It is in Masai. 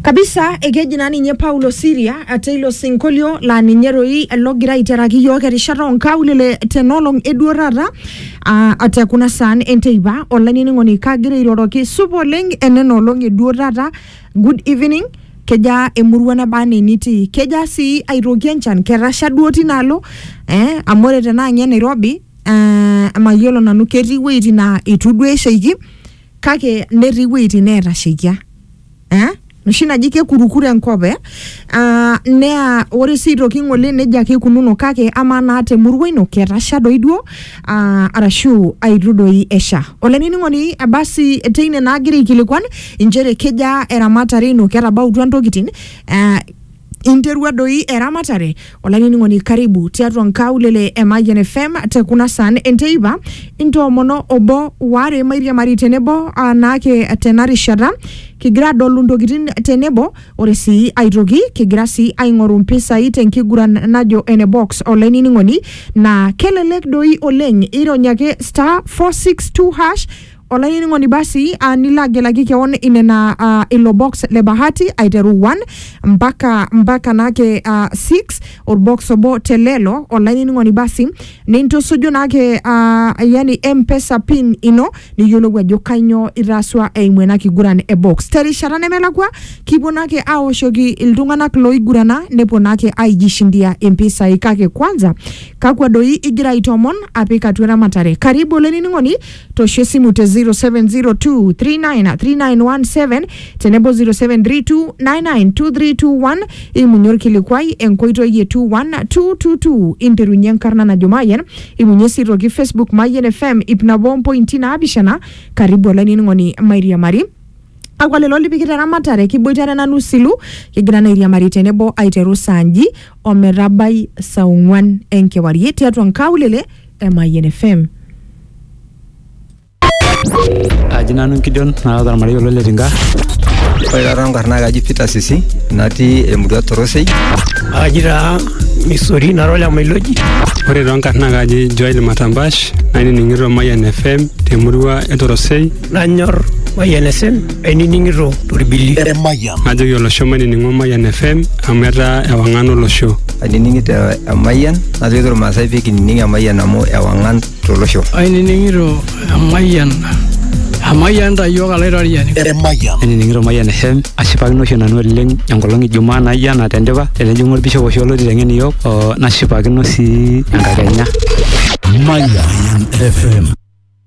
kabisa ekeji naa ninye Paulo Siria ate ilo sinkolio laa ninye doi logira aiteraki iyiook erishata oonkaulele tenolong eduo taata aa ate kuna saan enteipa olainining'oni kagira airoroki supa oleng enena olong eduo taata good evening kejaa emurua nabaa enaa enitii kejaa sii aitoki enchan ketasha duo tinaalo eh amu ore tenaa inye Nairobi eh mayiolo nanu ketii iwueitin naa itu duo eshaiki kake netii iwueitin neetasheikia eh? noshi naji kekurukuru enkop eh? Ah, naa ore sii aitoki ng'ole nejia ake ikununo kake amaa naa temurua ino ketasha doi duo ah, arashu aitu doi esha olainining'oni eh, basi teine naa agira aikilikuan inchere kejaa eramatare ino ketabautua intokitin eh, Interua doi eramatare olainining'oni karibu tiatua nkaulele e Mayian FM te kuna saan enteipa intoomono obo waare mairiamari tenebo anaake tena rishata kigira adolu ntokitin tenebo ore sii aitoki kigira sii aing'oru mpisai tenkiguran najo ene box olainining'oni naa kelelek doi oleng irony ake star 462 hash olainining'oni basi uh, nilo agelaki keon inena uh, ilo box le bahati aiteru 1 mpaka mpaka naake uh, 6 orbox obo te lelo olainining'oni basi nintusuju naake uh, yani mpesa pin ino niyiolou ajo kainyoo itaasua eimu ena kiguran e box terishata nemelakua kipuo naake aoshoki iltung'anak loigurana nepuo naake aijishindia impisai kake kwanza kakwa doi igira aitomon apik atua eramatare karibu olainining'oni tosho esimu te 0702393917 tenebo 0732992321 imunye orkilikuai enkoitoi e 21222 interunye enkarna najo mayian imunye sii toki facebook mayian fm ip nabo ompointi naapishana karibu olainining'oni mairiamari Kakwa lelo lipikita eramatare? Kiboitare nanu silu, kigira naa airiamari tenebo aiteru saa nji o metabai saa ong'uan enkewarie tiatua nkaulele e Mayian FM. Aji nanu Gideon naata ormarei olo Letinka. Ore taata nkarn naa kaji Peter Sisi natii emurua Torosei. Aji taa Misori nara ole Mailoji. Ore too nkarn naa kaji Joel Matambash nainining'ito Mayian FM temurua e Torosei. Nanyor Mayian FM ainining'ito torbili. Emayian. Najoki olosho mainining'o Mayian FM amu etaa ewang'an olosho. Ainining'ito Emayian najoki Irmaasai pee kinining Emayian amu ewang'an tolosho. Ainining'ito Emayian. Emayian ta iyiook alaitoriani. Emayian. Ainining'ito Mayian FM ashipakino oshi nanu oleng enkolong Ijumaa naijo ena tendipa tenejing'u olbishop oshi olotii teng'en iyiook nashipakino sii enkakenya. Mayian FM.